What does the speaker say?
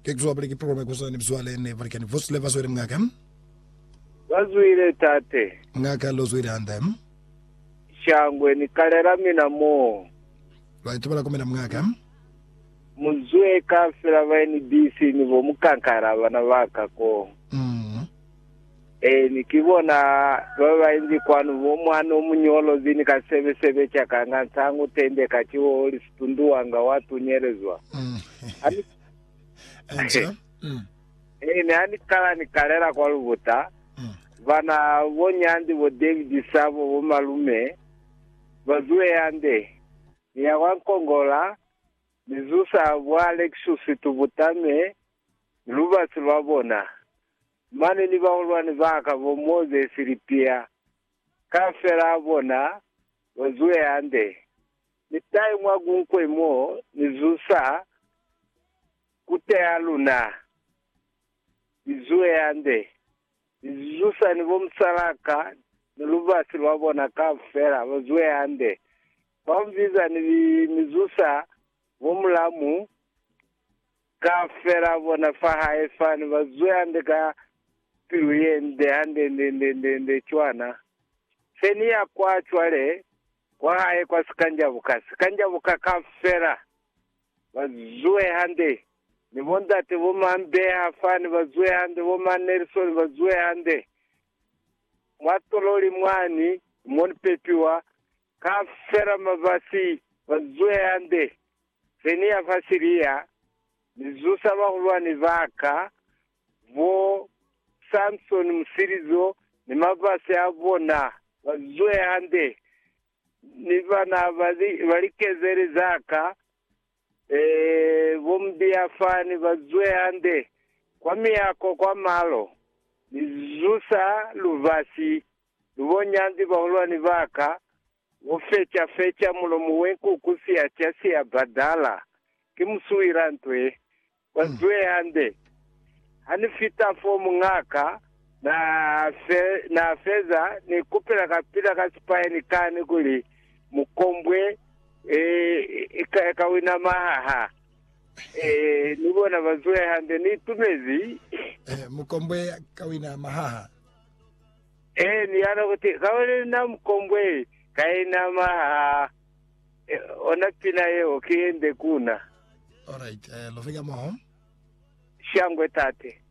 Ke kuzwa Buliki Pulome Kozani Mzwale ni Balikani Bosle Bazwile Mungaka. Bazwile Tate. Mungaka Lozwile Hande. Shangwe ni kalela mina moo. Baitu balakomela Mungaka. Muzwe kafela ba NBC ni bo mukankaela bana baka koo. Ee, ni ki bona ba ba inzi kwanu, bo mwana o muñolo bini ka sebe-sebe ca kanga, nsangu tende ka ciwo oli situndu wanga wa tunyelezwa. Mm. Ha ni, Enca. Mm. ee, ni ha ni kala ni kalela kwa lubuta, Mm. bana, bo Nyanzi, bo David Sabo, bo malume, ba zuhe hande. Ni ya kwa Nkongola, ni zusa bo Alexus Tubutame ni lubasi lwa bona. mane ni bahulwani ba ka bo Mozesi ni Piya, kaufela a bona ba zuhe hande. Ni tahe mwa kunkwe mo ni zusa ku teha luna, ni zuhe hande, ni zusa ni bo musalaa ka ni lubasi lwa bona kaufela, ba zuhe hande. Kwa mbiza ni zusa bo mulamu Kaufela bona fa hae fani ba zwe hande ka pilu ye nde hande nde nde nde nde cwana. Se ni ya kwa cwale kwa hae kwa sikanjabuka sikanjabuka kaufela. Ba zwe hande. Ni bo ndate bo ma Mbeha fani ba zwe hande, bo ma Nelson ba zwe hande. Mwa tololi mwani mo ni pepiwa, kaufela mabasi ba zwe hande. Se ni ya fa Siria, ni zusa bahulwani ba ka, bo Samsoni musilizo, ni mabasi a bona, ba zwe hande, ni bana ba likezeli za ka, ee, bo mubiyafani ba zwe hande, kwa miyako kwa malo. Ni zusa lubasi, lu bo nyanzi bahulwani ba ka, Ku feca feca mulomo we nku ku siya ca siya badala ki musuwila ntwe. Kwa zwe hande. Ha ni fita fo mungaka na fe, na feza ni kupela kapila ka sipayeni kani kuli mu kombwe eh, ka, ka wina mahaha. Eh, ni bona ba zwe hande, ni itumezi. Eh, mu kombwe ka wina mahaha. Ee, ni yala kuti, Kauli na mukombweli ka ina maha e, ona pina yeo ki ye nde kuna. Alright, eh, love ka moho. Shangwe tate.